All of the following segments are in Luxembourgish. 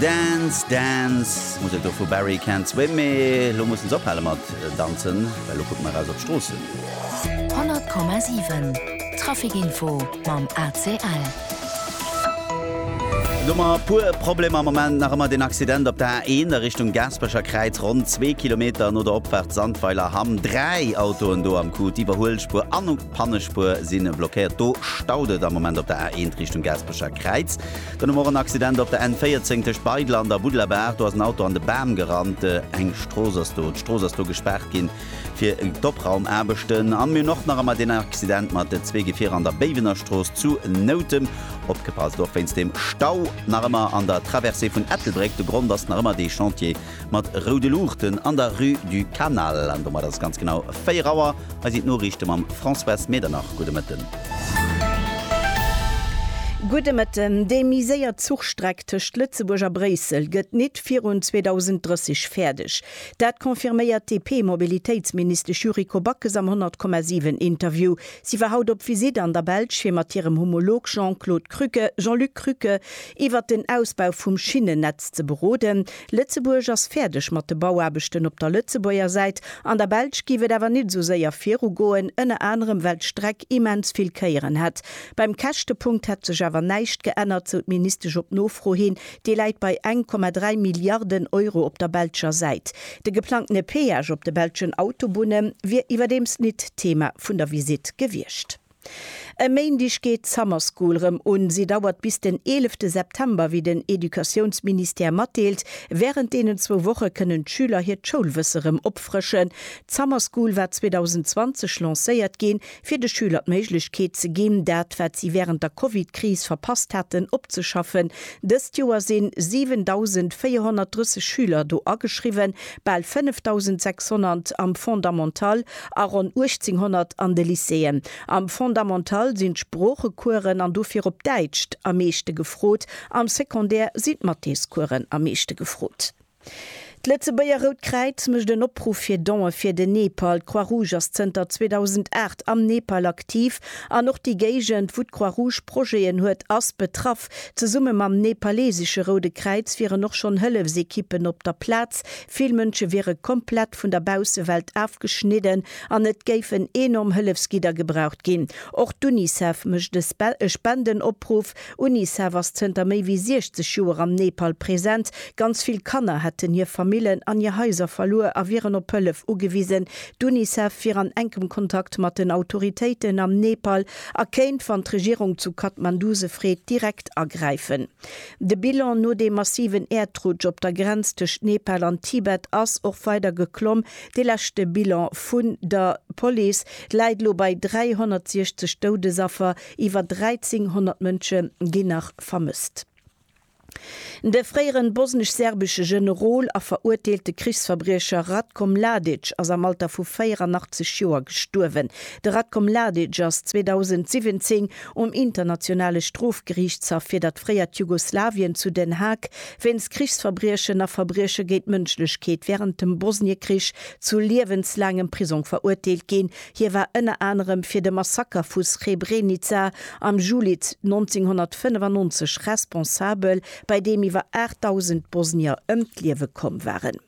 Dance, dance, muss ech do vu Barry Can't Swim, mee elo mussen se ophale mat danzen, well elo kucke mer eraus op d'Stroossen. 100,7 Traficinfo mam ACL. Domat e puer Problemer am Moment. Nach ëmmer deen Accident op der A1 a Richtung Gaasperecher Kräiz, ronn zwee Kilometer no der Opfaart Sandweiler Hamm. Dräi Autoen do am Coup, d'Iwwerhuelspuer an d'Pannespuer si blockéiert. Do staut et am Moment op der A1 Richtung Gaasperecher Kräiz. Den um Morgen Accident op der N14 tëscht Beidel an der Buddlerbaach. Do ass en Auto an de Bam gerannt. Eng Strooss ass do. D'Strooss ass do gespaart ginn fir d'Opraumaarbechten. An mir hunn och nach emmer deen Accident mat zwee Gefierer an der Béiwenerstrooss zu Noutem. Opgepasst och wéinst dem Stau nach emmer an der Traversée vun Ettelbréck. De Grond ass nach emmer dee Chantier mat roude Luuchten an der Rue du Canal. An domat ass et ganz genau 4 Auer. Hei sinn d'Noriichte mam Françoise Medernach. Gudde Mëtten. Gudde Mëtten. Déi méi séier Zuchstreck tëscht Lëtzebuerg a Bréissel gëtt nit virun 2030 fäerdeg. Dat confirméiert d'DP-Mobilitéitsministesch Yuriko Backes am 100,7 Interview. Si war haut op Visitt an der Belsch fir mat hirem Homolog Jean-Claude Krücke, Jean-Luc Krücke, iwwert den Ausbau vum Schinnennetz ze beroden. Lëtzebuerg ass fäerdeg mat de Bauaarbechten op der Lëtzebuerger Säit. An der Belsch géif et awer nit sou séier viru goen, ënner anerem well d'Streck immens vill Kéieren hätt. Beim Käschtepunkt hätt sech awer näischt geännert, sou d'Ministesch op Nofro hin. Dee läit bei eng Komma dräi Milliarden Euro op der belscher Säit. De geplangtene Peage op de belschen Autobunne wier iwwerdeems nit Thema vun der Visitt gewiescht. E Méindeg geet d'Summer School rëm un. Si dauert bis den eelefte September, wéi den Educatiounsministère matdeelt. Wärend deenen zwou Woche kënnen d'Schüler hiert Schoulwësse rëm opfrëschen. D'Summer School war 2020 lancéiert ginn, fir de Schüler d'Méiglechkeet ze ginn, dat, wat si wärend der Covid-Kris verpasst haten, opzeschaffen. Dëst Joer sinn 7.430 Schüler do ageschriwwen. bal 5.600 am Fondamental a ronn 1.800 an de Lycéeën. Am Fondamental sinn d'Sproochecoursen, an dofir op Däitsch, am meeschte gefrot, am Secondaire sinn d'Mathéscoursen am meeschte gefrot. D'Lëtzebuerger Rout Kräiz mécht en Opruff fir Don'e fir den Nepal. D'Croix-Rouge ass zënter 2008 am Nepal aktiv an och déi Géigend, wou d'Croix-Rouge Projeten huet, ass betraff. Unicef, zesumme mam nepalesesche Roude Kräiz wieren och schonn Hëllefsekippen op der Plaz. Vill Mënsche wiere komplett vun der Baussewelt afgeschnidden an et géifen enorm Hëllefsgidder gebraucht ginn. Och d'Unicef mécht e Spendenopruff. Unicef ass zënter méi wéi 60 Joer am Nepal present. Ganz vill Kanner hätten hir Famillen an hir Haiser verluer a wieren op Hëllef ugewisen. D'Unicef wier an enkem Kontakt mat den Autoritéiten am Nepal A kéint, wann d'Regierung zu Kathmandu se freet, direkt agräifen. De Bilan no deem massiven Äerdrutsch op der Grenz tëscht Nepal an Tibet ass och weider geklomm. Dee leschte Bilan vun der Police läit elo bei 360 Doudesaffer, iwwer 1.300 Mënsche ginn nach vermësst. De fréieren bosnesch-serbesche Generol a veruerteelte Krichsverbriecher Ratko Mladic ass am Alter vu 84 Joer gestuerwen. De Ratko Mladic ass 2017 um Internationale Strofgeriichtshaff fir dat fréiert Jugoslawien zu Den Haag wéinst Krichsverbriechen a Verbrieche géint d'Mënschlechkeet wärend dem Bosniekrich zu liewenslaangem Prisong veruerteelt ginn, Hie war ënner anerem fir de Massaker vu Srebrenica am Juli 1995 responsabel, bei deem iwwer 8.000 Bosnier ëm d'Liewe komm waren.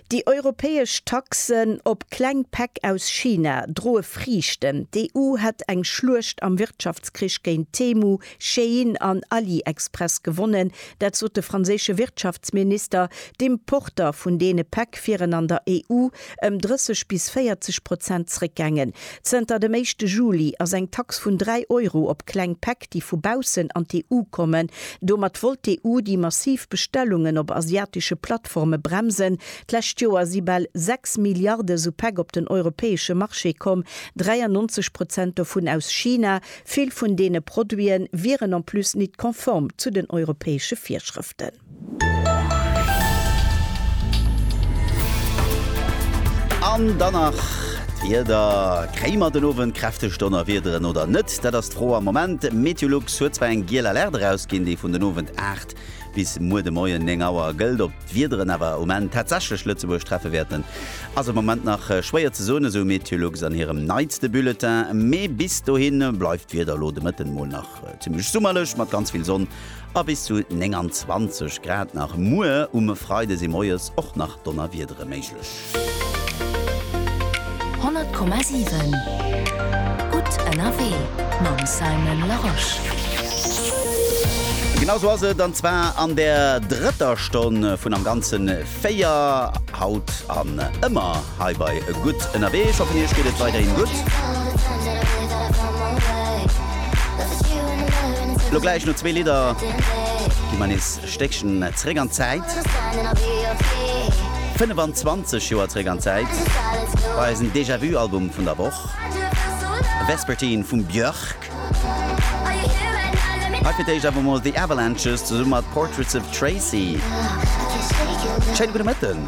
Déi europäesch Taxen op kleng Päck aus China droe Friichten, D'EU hätt eng Schluecht am Wirtschaftskrich géint Temu, Shein an AliExpress gewonnen, dat sot de franséische Wirtschaftsminister. D'Importer vun deene Päck wieren an der EU ëm 30 bis 40 Prozent zréckgaangen. Zënter dem éischte Juli ass eng Tax vun 3 Euro op kleng Päck, déi vu baussen an d'EU kommen. Domat wollt d'EU déi massiv Bestellungen op asiatesche Plattforme bremsen. D'lescht Joer si bal 6 Milliarde esou Päck op den europäesche Marché komm, 93 Prozent dovun aus China. Vill vun deene Produite wieren en plus nit konform zu den europäesche Virschrëften. An dann nach d'Wieder. Kréie mer den Owend kräfteg Donnerwiederen oder net? Dat ass d'Fro am Moment. Meteolux huet zwar eng giel Alerte erausginn, déi vun den Owend 8 bis muer de Moien 9 Auer gëllt. Ob d'Wiederen awer um Enn tatsächlech Lëtzebuerg treffe wäerten, ass am Moment nach schwéier ze soen, esou Meteolux an hirem neitste Bulletin. Mee bis dohi bleift d'Wieder elo de Mëtten mol nach zimmlech summerlech mat ganz vill Sonn a bis zu 29 Grad nach. Muer um e Freide si moies och nach Donnerwiedere méiglech. 100,7 Gutt ënnerwee mam Simon Larosche. Genau sou ass et, an zwar an der drëtter Stonn vun am Ganze véier, haut an ëmmer. Heibai e gutt ënnerwee, ech hoffen iech geet et weiderhin gutt. Lo gläich no zwee Lidder gi mer nees e Stéckchen zréck an d'Zäit, 25 Joer zréck an d'Zäit, bei eisen Déjà-Vu-Album vun der Woch, Vespertine vum Björk. Hei fir d'éischt awer mol The Avalanches zesumme mat Portraits of Tracy. Schéine gudde Mëtten.